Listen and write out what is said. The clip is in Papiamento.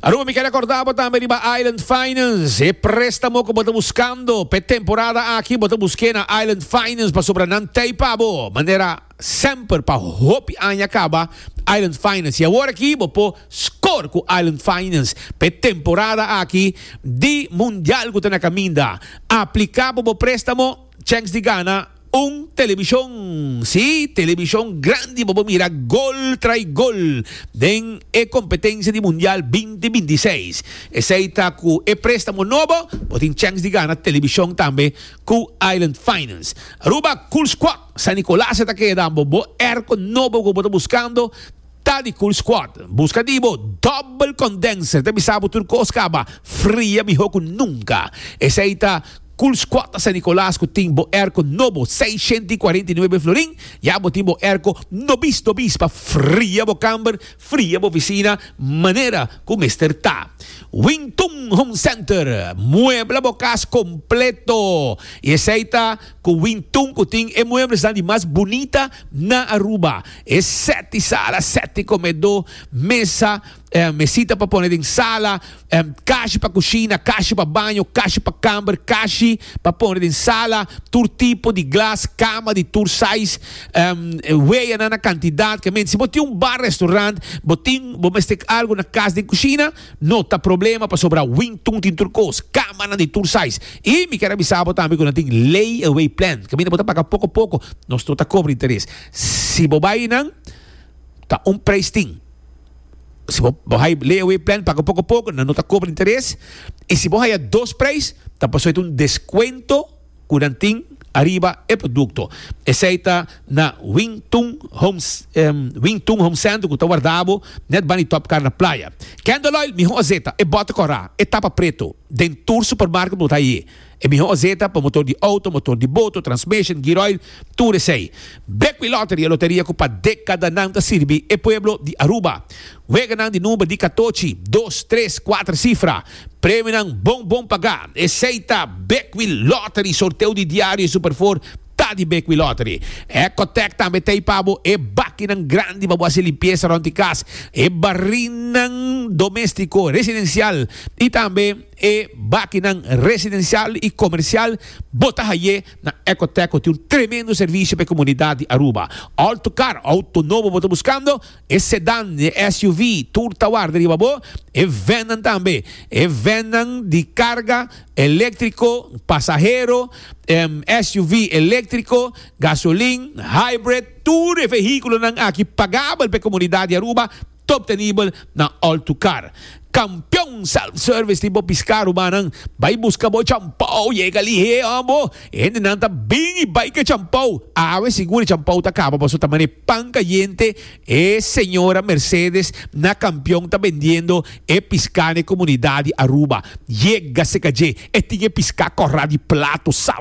Aruba mi ke rekorda bo tambe riba Island Finance. E prestamo ku bo ta buskando pe temporada aki bo ta buske na Island Finance pasobra nan tei pa bo. Manera semper pa hopi aña kaba Island Finance. I awor aki bo por score ku Island Finance pe temporada aki di mundial ku ta na kaminda. Aplika pa bo prestamo chèks di gana. Un televishon, sí, televishon grandi pa bo mira gol trai gol den e kompetensia di Mundial binti binti seis. Esei ta ku e préstamo nobo bo tin chèns di gana televishon tambe ku Island Finance. Aruba Cool Squad San Nicolas e ta keda bo bo èrko nobo ku bo ta buskando. Ta di Cool Squad. Buska di bo Double Condenser ta bisa bo tur cos caba fria miho cu nunca. Esey ta Cool Squad ta San Nicolas cu tin bo airco nobo seiscientos y cuarenta y nuebe florin. Ya bo tin bo airco nobis nobis pa fria bo camber, fria bo oficina manera cu mester ta. Wing Tung Home Center. Muebla bo cas completo y esey ta. Ku wintun ku tin e mueblesan di mas bunita na Aruba. E seti sala, seti komedó, mesa, mesita pa pone den sala, kashi pa kushina, kashi pa baño, kashi pa kamber, kashi pa pone den sala, tur tipo di glas, kama di tur sais, weanan na kantidat. Ke mente si bo tin un bar-restorant, bo tin, bo mester algu na kas den kushina. No ta problema pasobra Wingtun tin tur kos, kamanan di tur size. I mi kier a bisa bo tambe ku nan tin layaway plan. Kaminda bo ta paga poko poko, nos no ta kobra interes. Si bo bai nan, ta un preis tin. Si bo hai layaway plan, paga poko poko, nan no ta kobra interes. I si bo haya dos preis, ta pasó e ta un deskuento. ku nan tin ariba e produkto. Esei ta na Wing Tung Homes Wing Tung Home Center ku ta wardabo nèt bani Top Car na Playa. Candle Oil mihó ozeta, e bòte kòrá, e tapa preto, den tur supermarket bo ta haye. E mihó ozeta pa motor di outo, motor di boto, transmeshen, gear oil, tur esei. Bekwiloteri e loteria ku pa dekadanan ta sirbi e pueblo di Aruba. Weganan di number di katochi, dos, tres, kuater sifra. Premionan bon bon pagá. Esei ta Beckwil Lottery, sorteo di diario y super four ta di Beckwil Lottery. Ecotec tambe ta ei pa bo, e bakinan grandi pa bo haci limpieza rond di cas, e barrinan doméstico residencial y tambe e bakinan residencial y comercial bo ta hayé na Ecotec cu tin un tremendo servicio pa e comunidad di Aruba. Alto car, auto nobo bo ta buscando? e sedan, di e SUV, tur ta warda riba bo, e vennan tambe, e vennan di carga electrico, pasahero, SUV electrico, gasolin, hybrid, tur e vehiculonan aki pagabel pa e comunidad di Aruba, ta obtenibel na All2Car. Campeon self service tin bo pisca ruba nan bay busca bo champou yega lihe oh bo e hende nan ta bin y bay ke champou awe sigur e champou ta caba paso ta mane pan cayente e señora Mercedes na campeon ta bendiendo e pisca ne comunidad di Aruba yega se ca dje e tin e pisca corra di plato sabroso.